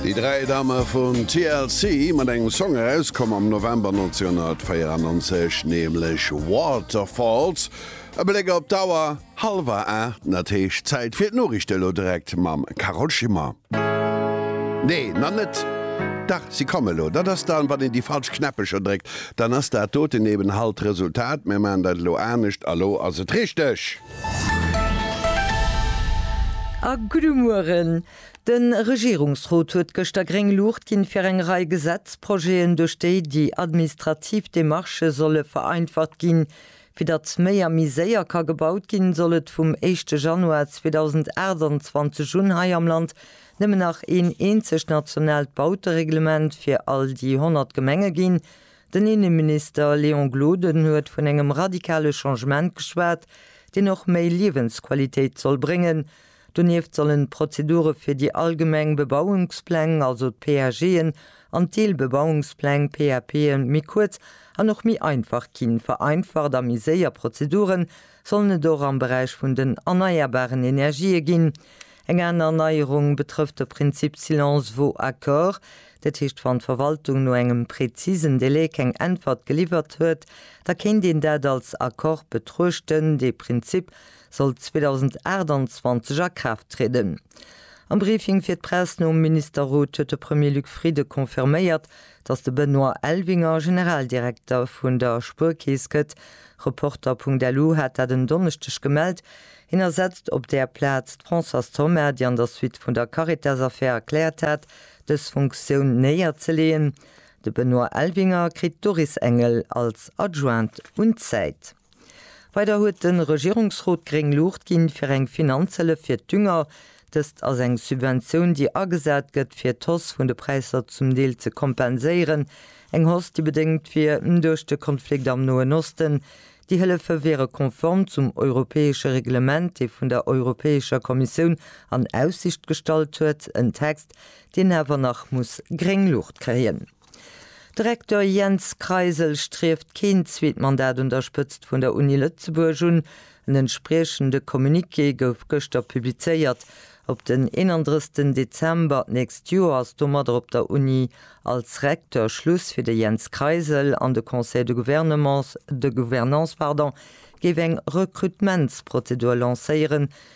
Déi dräi Dame vun TLC mat engem Song erauskomm am November 1994, nämlech Waterfalls. E Bléck op d'Auer, hallwer aacht, an et heescht Zäit fir d'Noriichte elo direkt mam Carole Schimmer. Nee, nach net, dach si komme lo. Dat ass dann, wann een déi falsch Knäppecher dréckt, dann ass dat doten eben halt d'Resultat. Mir maachen dat elo anescht a lo ass et richteg. A gudde Mueren. De Regierungsrot huet gëschter gréng Luucht ginn, fir eng Rei Gesetzprojeten, duerch déi déi administrativ Demarchë solle vereinfacht ginn. Fir datt méi a méi séier ka gebaut ginn, soll et vum éischte Januar 2028 un hei am Land nëmmen nach een eenzegt nationaalt Bautereglement fir all déi 100 Gemenge ginn. Den Inneminister Léon Gloden huet vun engem radikale Changement geschwat, deen och méi Liewensqualitéit soll bréngen. Donieft sollen d'Prozedure fir déi allgemeng Bebauungspläng, also d'PAGen, an d'Deelbebauungspläng, PAPen, méi kuerz an och méi einfach ginn. Vereinfacht a méi séier Prozedure sollen et och am Beräich vun den erneierbaren Energië ginn. Eng aner Neierung betrëfft de Prinzip Silence vaut accord. Dat heescht, wann d'Verwaltung no engem prezisen Delai keng Äntwert geliwwert huet, da kéint een dat als Accord betruechten. Dee Prinzip soll 2028 a Kraaft trieden. Am Briefing fir d'Press nom Ministerrot huet de Premier Luc Frieden confirméiert, datt de Benoît Elvinger Generaldirekter vun der Spuerkeess gëtt. Reporter.lu hat dat en Donneschdeg gemellt. Hien ersetzt op där Plaz d'Françoise Thoma, déi an der Suite vun der Caritas-Affär erkläert hat, dës Funktioun néierzeleeën. De Benoît Elvinger kritt d'Doris Engel als Adjointe un d'Säit. Weider huet de Regierungsrot gréng Luucht ginn, fir eng Finanzhëllef fir d'Dünger. Dëst ass eng Subventioun, déi agesat gëtt, fir d'Hausse vun de Präisser zum Deel ze kompenséieren. Eng Hausse, déi bedéngt wier duerch de Konflikt am Noen Osten. Déi Hëllefe wiere konform zum europäesche Reglement, dee vun der Europäescher Kommissioun an Aussicht gestallt huet. En Text, deen awer nach muss gréng Luucht kréien. De Recteur Jens Kreisel strieft keen zweet Mandat un der Spëtzt vun der Uni Lëtzebuerg un. En entspriechende Communiqué gouf gëschter publizéiert. Op den 31 Dezember d'nächst Joer ass domadder op der Uni als Recteur Schluss fir de Jens Kreisel an de Conseil de Gouvernements de Gouvernance géif eng Rekrutementsprozedur lancéieren,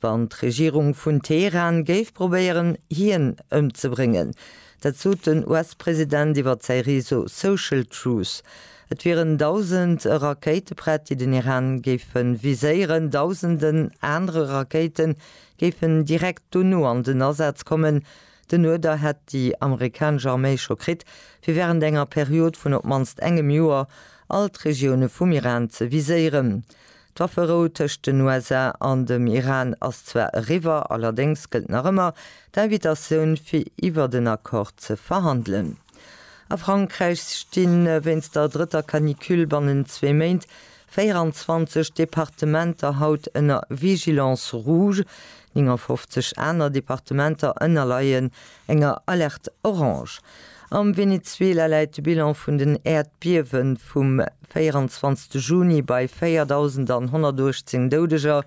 Wann d'Regierung vun Teheran géif probéieren, hien ëmzebréngen. Dat sot den US-President iwwer säi Réseau Social Truth. Et wieren dausend Rakéite prett, déi den Iran géife viséieren. Dausenden anere Rakéite géifen direkt dono an den Asaz kommen, Den Uerder hätt déi amerikanesch Arméi scho kritt, fir wärend enger Period vun op d'mannst engem Joer all d'Regioune vum Iran ze viséieren. D'Wafferou tëscht den USA an dem Iran ass zwar eriwwer, allerdéngs gëllt nach ëmmer d'Invitatioun, fir iwwert en Accord ze verhandelen. A Frankräich sti wéinst der drëtter Canicule bannent zwee Méint 24 Departementer haut ënner Vigilance rouge, 59 aner Departementer ënnerleien enger Alerte orange. Am Venezuela läit de Bilan vun den Äerdbiewe vum 24 Juni bei 4.118 Doudeger,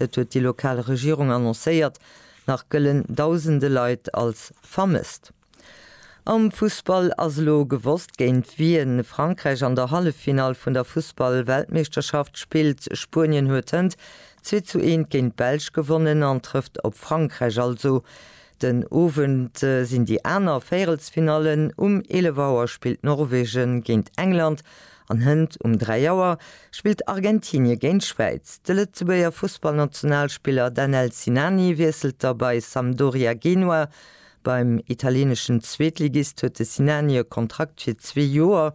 dat huet déi lokal Regierung annoncéiert. Nach gëllen dausende Leit als vermësst. Am Fussball ass elo gewosst géint wien Frankräich an der Halleffinall vun der Fussball-Weltmeeschterschaft spillt. Spuenien huet hënt zwee zu eent géint d'Belsch gewonnen an trëfft op Frankräich. Also den Owend sinn déi aner Véierelsfinallen, um 11 Auer spillt Norwegen géint England an hënt um 3 Auer spillt Argentinien géint d'Schwäiz. De Lëtzebuerger Fussballnationalspiller Danel Sinani wiesselt da bei Sampdoria Genua Beim italieneschen Zweetligist huet de Sinani e Kontrakt fir zwee Joer.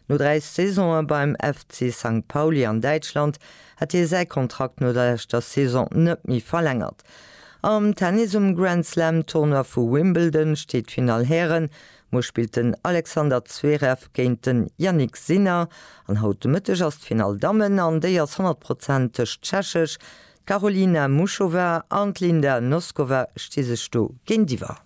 No dräi Saisone beim FC Sankt Pauli an Däitschland hat hie säi Kontrakt no der leschter Saison net méi verlängert. Am Tennis um Grand Slam Tournoi vu Wimbledon steet d'Finall Hären. Muer spillt den Alexander Zverev géint den Jannik Sinner an haut de Mëtteg ass d'Finall Dammen an déi ass 100 Prozent tëscht Tschechesch, D'Karolina Muchova an d'Linda Noskova sti sech do géintiwwer.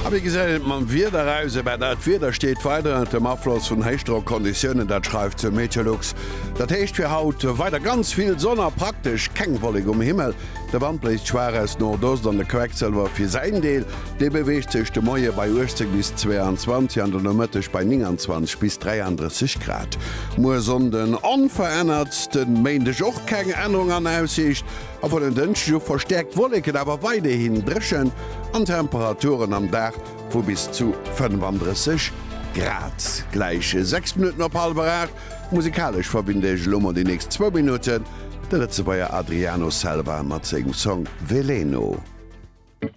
A wéi gesäit et mam Wieder aus? Ebaa dat Wieder steet weider ënnert dem Afloss vun Héichdrockconditiounen, dat schreift de Meteolux. Dat heescht fir haut weider ganz vill Sonn a praktesch keng Wollek um Himmel. De Wand bléist schwaach aus Nordost an de Quecksëlwer fir säin Deel Dee beweegt sech de Moie bei 18 bis 22 an den Nomëtteg bei 29 bis 33 Grad. Muer Sonnden onverännert, de Méindeg och keng Ännerung an Aussiicht a vun en Dënschdeg u verstäerkt Wolleken, awer weiderhi dréchen an Temperaturen am Dag vu bis zu 35 Grad gläichen. 6 Minutten op hallwer 8, musikalesch verbinde ech elo mol déi nächst zwou Minutten de Lëtzebuerger Adriano Selva mat sengem Song Veleno.